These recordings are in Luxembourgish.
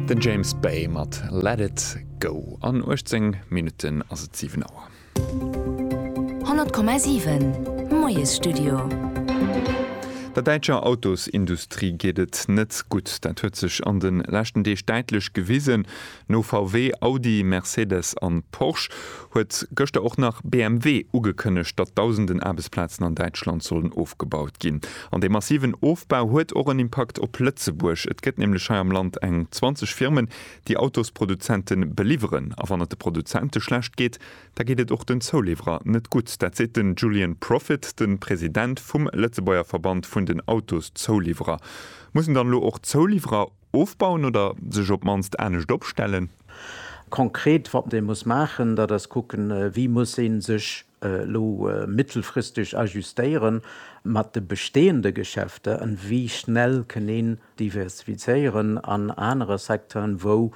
Den James Bay mat Let It Go. An 18 Minutten ass et 7 Auer. 100,7 Moiesstudio. Der däitscher Autosindustrie geet et net gutt. Dat huet sech an de leschten Deeg däitlech gewisen. No VW, Audi, Mercedes an Porsche huet gëschter och nach BMW ugekënnegt, datt dausenden Aarbechtsplazen an Däitschland sollen ofgebaut ginn. An dee massiven Ofbau huet och en Impakt op Lëtzebuerg. Et gëtt nämlech hei am Land eng 20 Firmen, déi Autosproduzenten beliwweren. A wann et de Produzente schlecht geet, da geet et och den Zouliwwerer net gutt. Dat seet den Julian Profit, de President vum Lëtzebuerger Verband vun den Autoszouliwwerer. Mussen dann elo och d'Zouliwwerer Ofbauen oder sech op d'mannst anescht opstellen? Konkret wat ee muss maachen, dat ass kucken, wéi muss ee sech elo mittelfristeg ajustéiere mat de bestehende Geschäfter an wéi schnell kënn een diversifizéieren an anere Secteuren, wou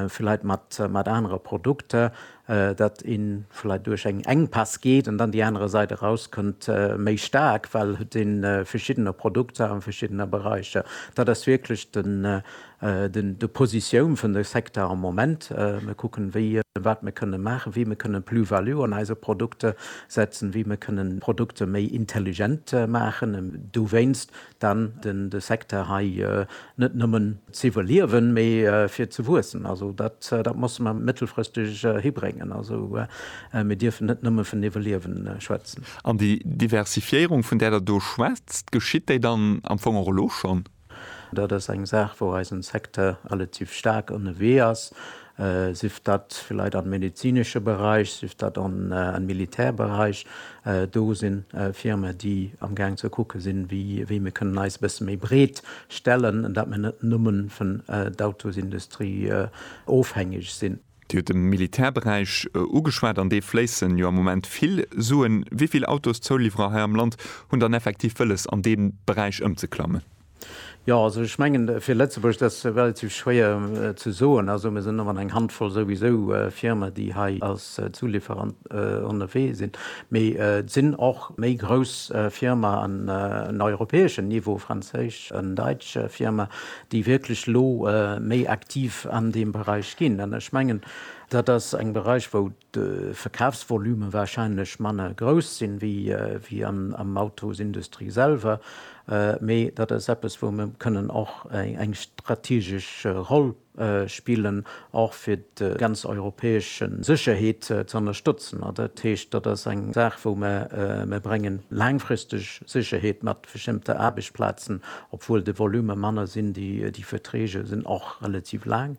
vläit mat anere Produkter, dat ee vläit duerch eng Enkpäss geet an dann déi anerer Sait erauskënnt méi staark, well et de verschiddener Produkter a verschiddener Beräicher. Dat ass wierklech de Positioun vun de Secteur am Moment. Mir kucken, wéi a wat mir kënnen maachen, wéi mir kënnen Plus-value an eise Produkter setzen, wéi mir kënnen Produkter méi intelligent maachen. Dowéinst dann den de Secteur hei net nëmmen ze iwwerliewen, mee fir ze wuessen. Also dat dat musse mer mëttelfristeg hibréngen. Also mir dierfen net nëmme vun iwwerliewen schwätzen. An déi Diversifiéierung, vun där Der do schwätzt, geschitt déi dann am Fong och elo schonn? Dat ass eng Saach, wou eisen Secteur relativ staark ënnewee ass. sief dat villäit am medezinesche Beräich, sief dat am Militärberäich, do si Firmen, déi amgaang ze kucke sinn, wéi mir kënnen eis e bësse méi breet stellen, dat mir net nëmme vun d'Autosindustrie ofhängeg sinn. Dir hutt de Militärberäich ugeschwat, an dee fléisse jo am Moment vill Suen. Wéi vill Autoszouliwwerer hei am Land hunn dann effektiv wëlles, an dee Beräich ëmzeklammen? Jo, also ech mengen, fir Lëtzebuerg, dat ass relativ schwéier ze soen. Also mir sinn ëmmer eng Handvoll souwisou Firmen, déi hei als Zulieferant ënnerwee sinn. Mee et sinn och méi grouss Firmaen un europäeschem Niveau, franséisch an däitsch Firmaen, déi wierklech elo méi aktiv an deem Beräich ginn. An ech mengen, dat ass eng Beräich, wou de Verkafsvolume wahrscheinlech manner grouss sinn, wéi am Autosindustrie selwer, mee dat ass eppes, wou mer kënnen och eng strategesch Roll spillen, och fir déi ganz europäesch Sécherheet ze ënnerstëtzen. Dat heescht, dat ass eng Saach, wou mer, mer bréngen laangfristeg Sécherheet mat. bestëmmter Aarbechtsplazen, obwuel de Volume manner sinn, déi Verträge sinn och relativ laang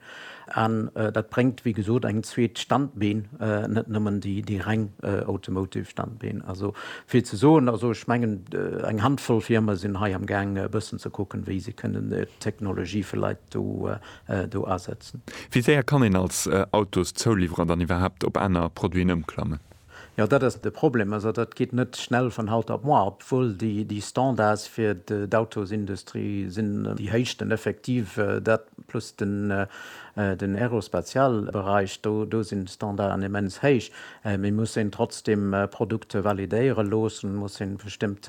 an dat bréngt, wéi gesot, eng zweet Standbeen, net nëmmen déi reng automotive Standbeen. Also vill ze soen. Also ech mengen, eng Handvoll Firme sinn hei am Gaang e bëssen ze kucken, wéi se kënnen d'Technologie vläit do asetzen. Wéi séier kann een als Autoszouliwwerer dann iwwerhaapt op aner Produiten ëmklammen? Jo, dat ass de Problem. Also dat geet net schnell vun haut op moar, obwuel déi Standards fir d'Autosindustrie sinn déi héichsten effektiv. Dat plus den Aerospatialberäich, do sinn d'Standarden immens héich. Mee muss een trotzdem Produkte validéiere loossen, muss een bestëmmt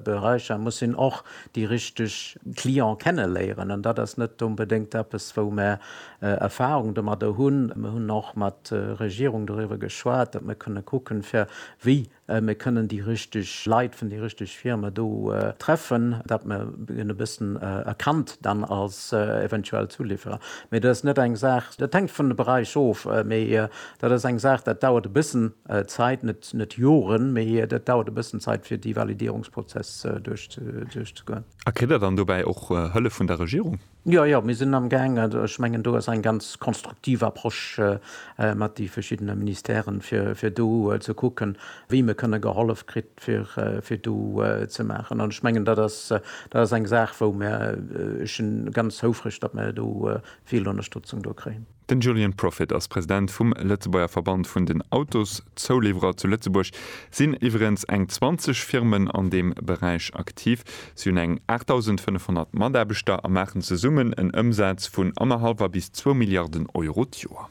Beräicher, muss een och déi richteg Client kenneléieren. An dat ass net onbedéngt eppes, wou mär Erfahrung domadder hunn. Mir hunn och mat der Regierung doriwwer geschwat, datt mir kënne kucken, fir wéi mir kënnen déi richteg Leit vun déi richteg Firme do treffen, datt mir en e bëssen erkannt dann als eventuell Zuliwwerer. Mee dat ass net eng Saach, dat hänkt vun de Beräich of, mee dat ass eng Saach, dat dauert e bëssen Zäit, net Joren, mee dat dauert e bëssen Zäit, fir déi Validierungsprozess duerchzegoen. A kritt Der dann dobäi och Hëllef vun der Regierung? Jo, jo, mir sinn amgaang, ech mengen do ass eng ganz konstruktiv Approche mat de verschiddene Ministèren, fir do ze kucken, wéi mir kënne gehollef kritt, fir do ze maachen. An ech mengen, dat ass eng Saach, wou mir, ech si ganz houfreg, datt mir do vill Ënnerstëtzung do kréien. Den Julien Profit ass President vum Lëtzebuerger Verband vun den Autoszouliwwerer. Zu Lëtzebuerg sinn iwwerens eng 20 Firmen an deem Beräich aktiv. Si hunn eng 8.500 Mataarbechter a maachen zesummen en Ëmsaz vun annerhallwer bis zwou Milliarden Euro d'Joer.